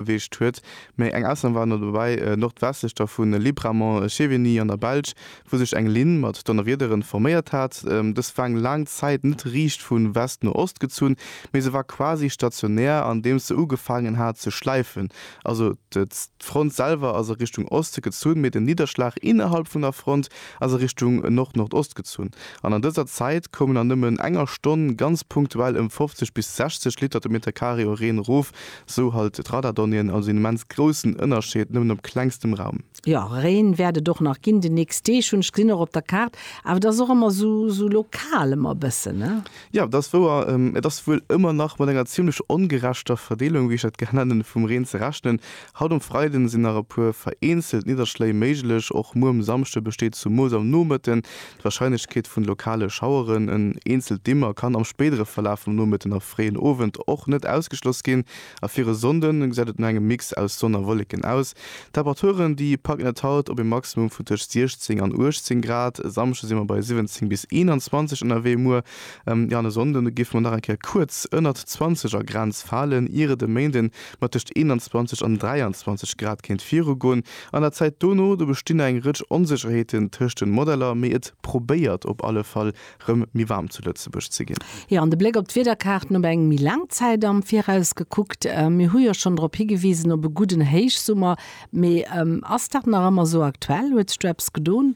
erreecht huet, mee eng Ausnam war ëmmer dobäi, nordwestlech dervun Libramont, Chevigny an der Belsch, wou sech eng Linn mat Donnerwiederen forméiert hat. Dës war eng laang Zäit net riicht vu West no Ost gezunn, mee se war quasi stationär andeems se ugefaangen hat ze schläifen. Also d'Front selwer ass a Richtung Oste gezunn, mee den Nidderschlag innerhalb vun der Front ass a Richtung Nord-Nordost gezunn. An an dëser Zäit koumen an nëmmen enger Stonn ganz punktuell ëm 50 bis 60 Liter de Meterkaree u Reen erof, Sou halt d'Radardonnien also een immens groussen Ënnerscheed nëmmen op klengstem Raum. Jo, Reen wärt et och nach ginn de nächst Deeg, hunn ech gesinn och op der Kaart, awer et ass och ëmmer sou lokal ëmmer e bëssen, ne? Jo, et ass wouer. Et ass wuel ëmmer nach mat enger zimmlech ongerechter Verdeelung, wéi ech dat gär nennen, vum Reen ze rechnen. Haut um Freiden sinn nach e puer vereenzelt Nidderschléi méiglech, och muer um Samschde besteet zumools am Nomëtten D'Warscheinlechkeet vun lokale Schaueren, en eenzelt Dimmer, kann am spéidere Verlaf vum Nomëtten a fréien Owend och net ausgeschloss ginn. A fir e Sonnde gesäit et no engem Mix aus Sonn a Wolleken aus. D'Temperaturen, déi packen et haut op e Maximum vun tëscht 16 an 18 Grad. E Samschde si mer bei 17 bis 21 ënnerwee. Muer, jo, an e Sonnde géife mer nach eng Kéier kuerz ënnert d'zwanzeger Grenz falen, ier et e Méinde mat tëscht 21 an 23 Grad kéint virugoen. An der Zäit dono, do bestinn eng Rëtsch Onsécherheeten tëscht den Modeller, mee et probéiert op alle Fall rëm méi waarm zu Lëtzebuerg ze ginn. Jo, an de Bléck op d'Wiederkaarten op eng méi laang Zäit am Viraus gekuckt, mir hu jo schonn drop higewisen op e gudden Héichsummer, mee ass dat nach ëmmer esou aktuell? Huet sech do eppes gedon?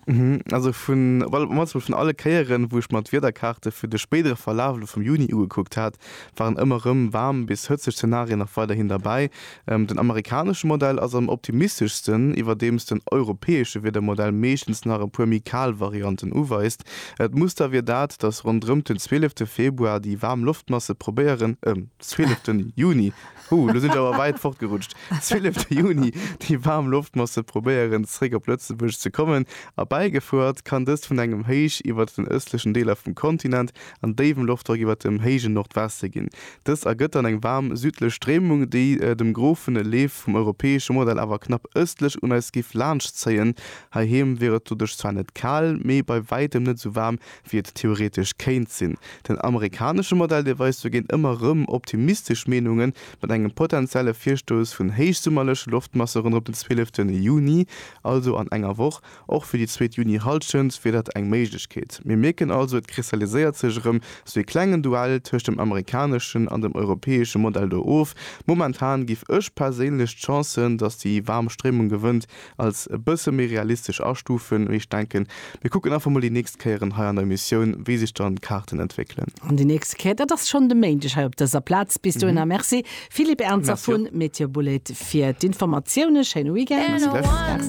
Also vun, well mol vun alle Kéieren, wou ech mer d'Wiederkaarte fir de spéidere Verlaf elo vum Juni ugekuckt hat, waren ëmmer rëm waarm bis hëtzeg Zenarien nach weiderhin derbäi. Den amerikanesche Modell ass am optimisteschsten, iwwerdeems den europäesche Wiedermodell meeschtens nach e puer méi kal Varianten uweist. D'Muster wier dat, datt ronderëmt den 12 Februar déi waarm Loftmasse probéieren, 12 Juni, hu lo sinn ech awer wäit fortgerutscht, 12 Juni, déi waarm Loftmasse probéieren zeréck op Lëtzebuerg ze kommen. Erbäigefuert kann dëst vun engem Héich iwwert den ëstlechen Deeler vum Kontinent, an déiwem Loftdrock iwwert dem héije Nordweste ginn. Dëst ergëtt dann eng waarm südlech Stréimung, déi dem grofene Leef vum europäesche Modell awer knapp ëstlech un eis géif laanschtzéien. Heiheem wier et doduerch zwar net kal, mee bei wäitem net esou waarm, wéi et theoretesch kéint sinn. Den amerikanesche Modell, dee weist dogéint ëmmer erëm optimistesch Meenungen, mat engem potenzielle Virstouss vun héichsummerleche Loftmasse ronderëm den 12 Juni, also an enger Woch, Och fir déi zweet Juni-Hallschent wier dat eng Méiglechkeet. Mir mierken also, et kristalliséiert sech erëm sou ee klengen Duell tëscht dem amerikaneschen an dem europäesche Modell do of. Momentan giff ech perséinlech d'Chancen, datt déi waarm Stréimung gewënnt, als e bësse méi realistesch astufen. Mee ech denken, mir kucken einfach mol déi nächst Kéieren hei an der Emissioun, wéi sech dann d'Kaarten entwéckelen. An déi nächst Kéier, dat ass schonn de Méindeg hei op dëser Plaz. Bis dohinner, merci Philippe Ernzer Merci. vun MeteoBulleit fir d'Informatiounen. Schéine Weekend. Merci gläichfalls.